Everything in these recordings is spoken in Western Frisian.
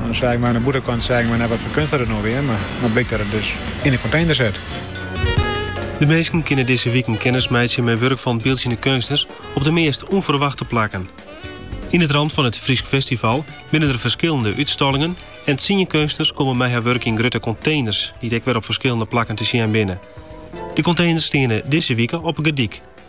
Oan 'e side mei oan 'e bûtenkant sei ik my net wat foar keunst dat it no wie, mar no blykt dat it dus yn 'e container sit. De minsken kinne dizze wiken kennis meitsje mei wurk fan byldzjende keunstners op de meast ûnferwachte plakken. Yn it ramt fan it Frysk Festival binne der ferskillende útstallingen en tsien keunstners komme mei har wurk yn grutte containers dy't ek wer op ferskillende plakken te sjen binne. De containers steane dizze wike op Gedyk.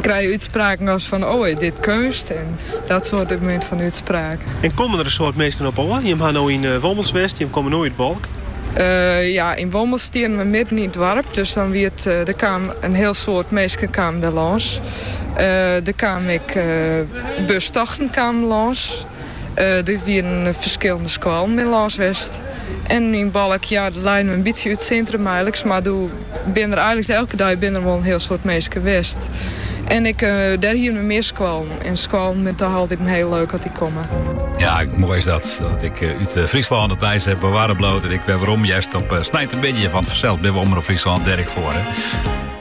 krije útspraken as fan, o, is dit keunst? en dat soarte mear fan útspraken. En komme der in soad minsken op ôf? Jimme ha no yn Wommels west, jimme komme no út Balk. Ja, yn Wommels stiene we midden yn it doarp, dus dan wie it, der kaam in hiel soad minsken kamen der lâns. Der kamen ek bustochten kamen lâns. Der wienen ferskillende skoallen by lâns west. En yn Balk, ja, dat lei no in bytsje út it sintrum eiliks, mar doe binne der eiliks elke dei binne der wol in hiel soad minsken west. En ek dêr hiene we mear skoallen. En skoallen binne toch altyd in hiel leuk as dy komme. Ja, moai is dat, dat ik eh, út eh, Fryslân it nijs heb bewaren bloot en ik wit wêrom just op eh, Snijt in bytsje, want fansels binne we Omrop Fryslân Dirk foar. Hè?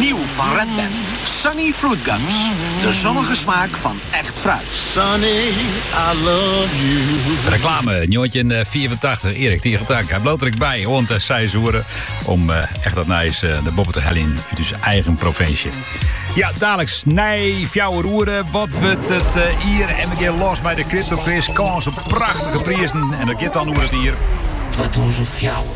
Nieuw fan Red Band, Sunny Fruit Gums, de zonnige smaak fan echt fruit. Sunny, I love you. Reklame, njoggentjinhûndertfiifentachtich, Erik Tiegeltank. Ik bliuw der ek by oant de seis oere om eh, echt dat nijs eh, nei boppen te heljen út ús eigen provinsje. Ja, daliks nei fjouwer oere. Wat wurdt it eh, jier? En we geane los mei de Kryptokwis. Kâns op prachtige prizen. En dat giet dan oer it jier 2004.